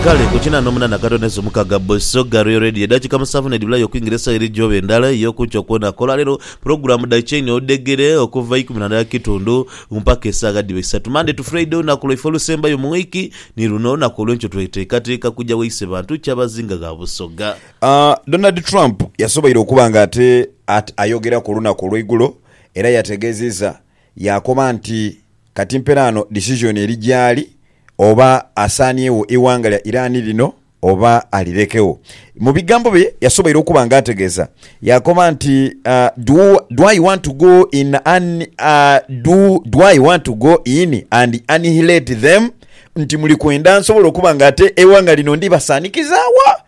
Kale ku kinana omunana Kato ne Sumuka Gabbo Show ga Royal Radio edakika musanvu nedibulayo okuingira esawa eri gyobe endala eyokunkyo kwona ku olwaleero pulogulamu dha Chain odhegere okuva ikumi na ndala kitundu mpaka esagha dhiba isatu Monday to Friday olunaku lwaife olusembayo mu wiiki ni luno olunaku olwenkyo twetekateeka kugya waise bantu Kyabazinga gha Busoga. Donald Trump yasoboire okuba nga ate ayogera ku lunaku olweigulo era yategeziza yakoba nti Kati mperaano decision eri gyaali oba asaaniegho eighanga lya Iran lino oba alirekegho. Mu bigambo bye yasoboire okuba nga ategeeza yaakoba nti, Do do I want to go in an do do I want to go in and annihilate them nti muli kwenda nsobole okuba nga ate eighanga lino ndibasaanikizaagho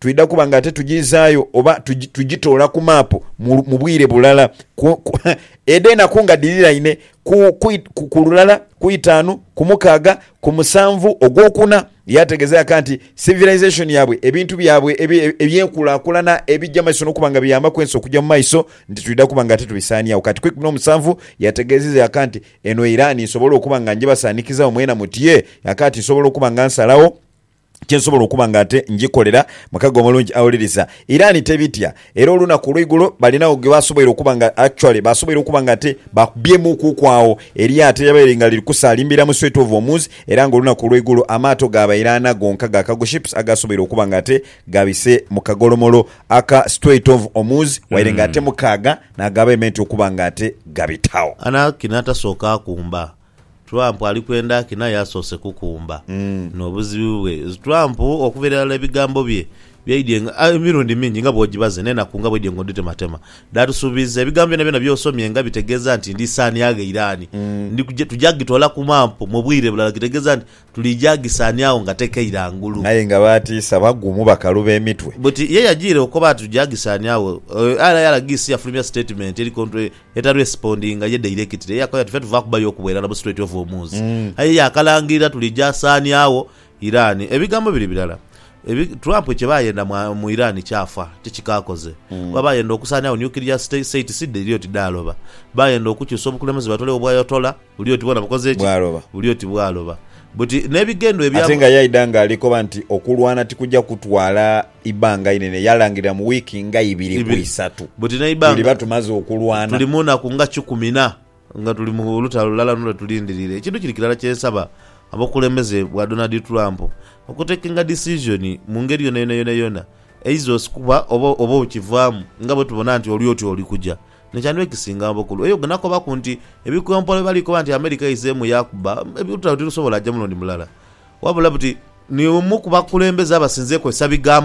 Twidha kuba nga ate tugiizaayo oba tugitoola ku maapu mu bwire bulala edho enaku nga dhiriraine ku lulala, ku itaanu, ku mukaaga, ku musanvu ogwokuna. Yaategeeza yaka nti civilization yaabwe, ebintu byabwe eby'enkulakulana ebija mu maiso n'okuba nga biyambaku ensi okuja mu maiso nti twidha kuba nga ate tubisaaniagho kati ku ikumi n'omusanvu. Yategeezeza yaka nti eno Iran nsobola okuba nga njibasaanikizawo mwena mutye yaka nti nsobola okuba nga nsalagho kye nsobola okuba nga ate ngikolera. Mukago omulungi awuliriza. Iran tebitya. Era olunaku olweigulo balinagho gwe basoboire okuba nga, actually, basoboire okuba nga ate baakubyemuukuku agho eryato eryabaire nga liri kusaalimbira mu Strait of Hormuz, era nga olunaku olweigulo amaato gaabaire ana gonka ga cargo ships agaasoboire okuba nga ate gabise mu kagolomolo aka Strait of Hormuz, waire nga ate mukaaga naagaabaire meant okuba nga ate gabitagho. Anarchy n'atasoka akumba. Trump ali kwenda ki naye asoose kukumba n'obuzibu bwe. Trump okuva irala ebigambo bye byaidye nga emirundi mingi nga bw'ogibaze n'enaku nga bw'oidye nga odhitematema dhaatusuubiiza. Ebigambo byonabyona by'osomye nga bitegeeza nti ndi saaniagho Iran, ndi kugi, tuja gitoola ku maapu mu bwire bulala, kitegeeza nti tuliija gisaaniagho nga tekeira ngulu. Aye nga baatiisa bagumu bakaluba emitwe. Buti ye yajiire okoba nti tuja gisaaniagho. Aye era yalagii si yafulumya sitatimenti eri kontro Eta respondinga ye directly eyakoya ati fe tuva kubayo okuba irala mu Strait of Hormuz aye yakalangirira tulijasaania wo Iran ebigambo biri birala ebi Trump kye bayenda mu Iran kyafa ti kikakoze kuba bayenda okusaania wo nuclear state sidde iri oti daaloba bayenda okukyusa obukulemeze batole wo bwayotola buli oti bwona bukoze ki buli oti bwaloba buti nebigendwa ebya. Ate nga yaidha nga alikoba nti okulwana tikuja kutwala. ibanga inene, yalangirira mu wiiki nga ibiri ku isatu, tuliba tumaze okulwana. Tuli mu naku nga kikumi na nga tuli mu lutalo lulala luno lwe tulindiriire. Ekintu kiri kirala kye nsaba abokulembeze bwa Donald Trump, okutekinga decision mu ngeri yonayona yonayona eiza osikuba oba oba okivaamu nga bwe tubona nti oli oti oli kuja. Kino kyandiba ekisinga obukulu. Eyo gwe nakobaku nti ebikompola bye bali koba nti America eizeemu yakuba, olutalo tirusobola aja mulundi mulala wabula buti ni omu ku bakulembeze abasinze kozesa bigambo.